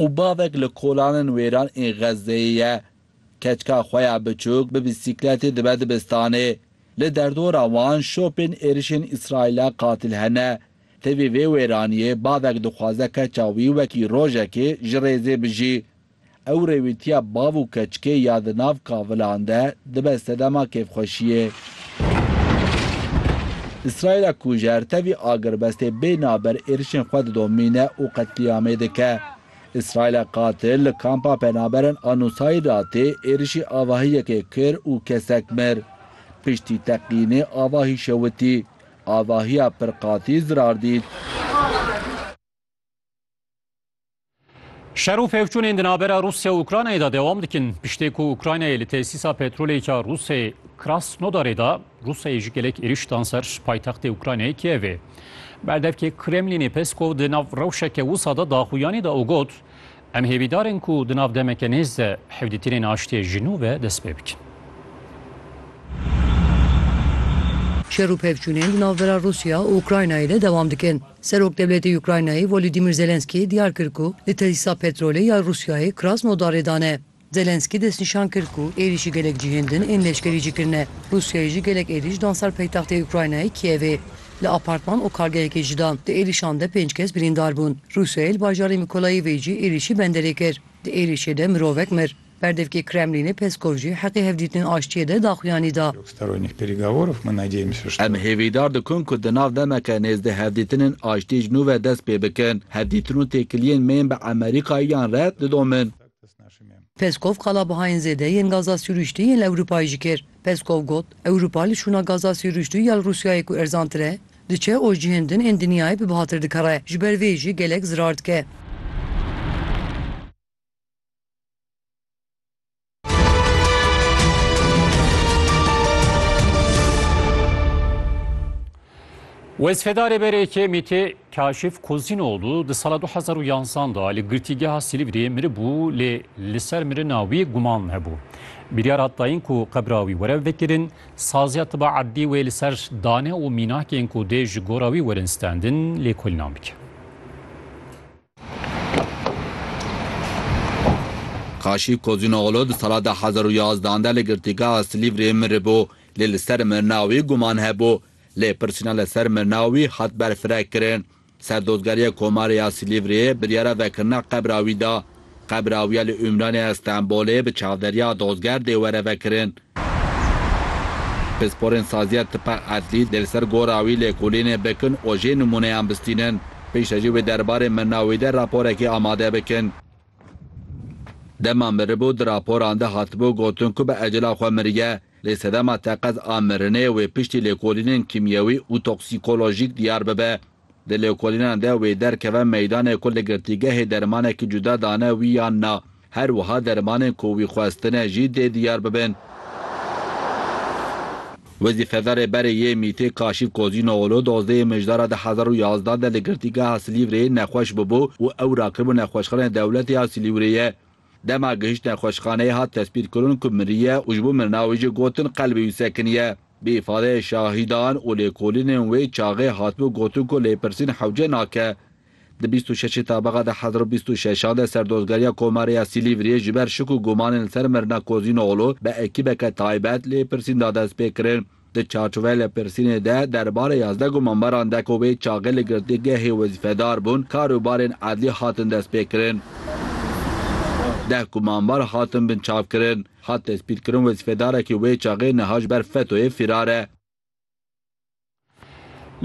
û bavek li kolanên wêran ên Xezzeyê ye. Keçika xwe ya biçûk bi bîsîkletê dibe dibistanê. Li derdora wan şopên êrişên Îsraîla qatil hene. Tevî vê wêraniyê bavek dixwaze keça wî wekî rojekê ji rêzê bijî. Ew rêwîtiya bav û keçikê ya di nav kavilan de dibe sedema kêfxweşiyê. Îsraîla ku ji her tevî agirbestê bê naber êrişên xwe didomîne û qetlîamê dike. Îsraîla qatil li kampa penaberan a Nusayratê êrişî avahî yekê kir û kesek mir. Piştî teqînê avahî şewitî. Avahiya pirqatî zirar dît. Şer û pevçûnên di navbera Rûsya û Ukraynayê de dewam dikin. Piştê ku Ukraynayê li tesîsa petrolêka Rûsê Krasnodarê de Rûsyayê ji gelek êriş dan ser paytextê Ukraynayê Kievê. Berdevkê Kremlînê Peskov di nav rewşeke wisa de daxuyanî da û got, Em hêvîdar in ku di nav demeke nêz de hevdîtinên aştiyê ji nû ve dest pê bikin. Şer û pevçûnên di navbera Rûsya û Ukraynayê de dewam dikin. Serokdewletê Ukraynayê Volodymyr Zelenskyy diyar kir ku li tesîsa petrolê ya Rûsyayê Krasnodarê dane. Zelenskyy destnîşan kir ku êrîşî gelek cihên din ên leşkerî jî kirine. Rûsyayê jî gelek êrîş dan ser paytextê Ukraynayê Kievê. Li apartman û kargehekê ji dan di êrîşan de pênc kes birîndar bûn. Rûsyayê li bajarê Mikolayivê jî êrîşî benderê kir. Di êrîşê de mirovek mir. Berdevkê Kremlînê Peskov jî heqê hevdîtinên aştiyê de daxuyanî da. Em hêvîdar dikin ku di nav demeke nêzdî hevdîtinên aştiyê ji nû ve dest pê bikin. Hevdîtin û têkiliyên me yên bi Amerîkayê yan re didomin. Peskov qalabihayên zêde yên gaza sirûştî yên li Ewropayê jî kir. Peskov got, Ewropa li şûna gaza sirûştî ya li Rûsyayê ku erzantir e, diçe û cihên din ên dinyayê bi bihatir dikere, ji ber vê jî gelek zirar dike. Wezfedarê BRK'ê Mîtê Kaşif Kozînoğlu di sala 2011 da li girtîgeha Silîvrê miribû lê li ser mirina wî guman hebû. Biryar hat dayîn ku qebra wî were vekirin, saziya tiba edlî wê li ser dane û mînakên ku dê ji gora wî werin stendin lêkolînan bike. Kaşî Kozînoglû di sala du hezar û yazdan de li girtîgeha Silîvrê miribû lê li ser mirina wî guman hebû. Lê pirsîna li ser mirina wî hat berfireh kirin. Serdozgeriya Komarê ya Silîvriyê biryara vekirina qebra wî da. Qebra wî ya li Ûmranê ya Stenbolê bi çavderiya dozger dê were vekirin. Pisporên Saziya Tipa Edlî dê li ser gora wî lêkolînê bikin û jê nimûneyan bistînin. Piştre jî wê derbarê mirina wî de raporekê amade bikin. Dema miribû di raporan de hatibû gotin ku bi ecela xwe miriye, lê sedema teqez a mirinê wê piştî lêkolînên kîmyewî û toksîkolojîk diyar bibe. Di lêkolînan de wê derkeve meydanê ku li girtîgehê dermanekî cuda dane wî yan na. Her wiha dermanên ku wî xwestine jî dê diyar bibin. Wezîfedarê berê yê mîtê Kaşîf Kozînooglu dozdeyê mijdara di hezar û yazdeh de li girtîgeha Silîvreyê nexweş bûbû û ew rakiribû nexweşxaneyê dewletê ya Silîwreyê. Dema gihişt nexweşxaneyê hat tespîtkirin ku miriye û ji bo mirina wê jî gotin qelbê wî sekinî ye. Bi îfadeyê şahîdan û lêkolînên wê çaxê hatibû gotin ku lêpirsîn hewce nake. Di bîst û şeşê tabeqa di hezar û bîst û şeşan de Serdozgeriya Komarê ya Silîvriyê ji ber şik û gumanên li ser mirina Kozînoglû bi ekîbeke taybet lêpirsîn da destpêkirin. Di çarçoveya lêpirsînê de derbarê yazdeh gumanbaran de ku wê çaxê li girtîgehê wezîfedar bûn karûbarên edlî hatin destpêkirin. Deh gumanbar hatin binçavkirin. Hat tespîtkirin wezîfedarekî wê çaxê niha ji ber FETO'yê fîrar e.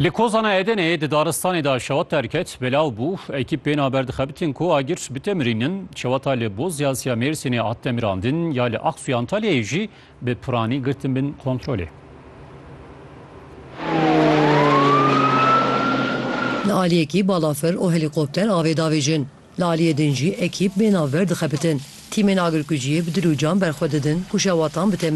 Li Kozana Edeneyê di daristanê de şewat derket, belav bû. Ekîp bên haber dixebitin ku agir bi temirîn in. Şewata li Bozyaz ya Mêrsînê hat temirandin, ya li Aqsuya Antalyayê jî bi piranî girtin bin kontrolê. Li aliyekî balafir û helîkopter avê davêjin. Li aliyê din jî ekîp bê navber dixebitin. Tîmên agirkuciyê bi dil û can berxwe didin ku şewatan bi temrîn.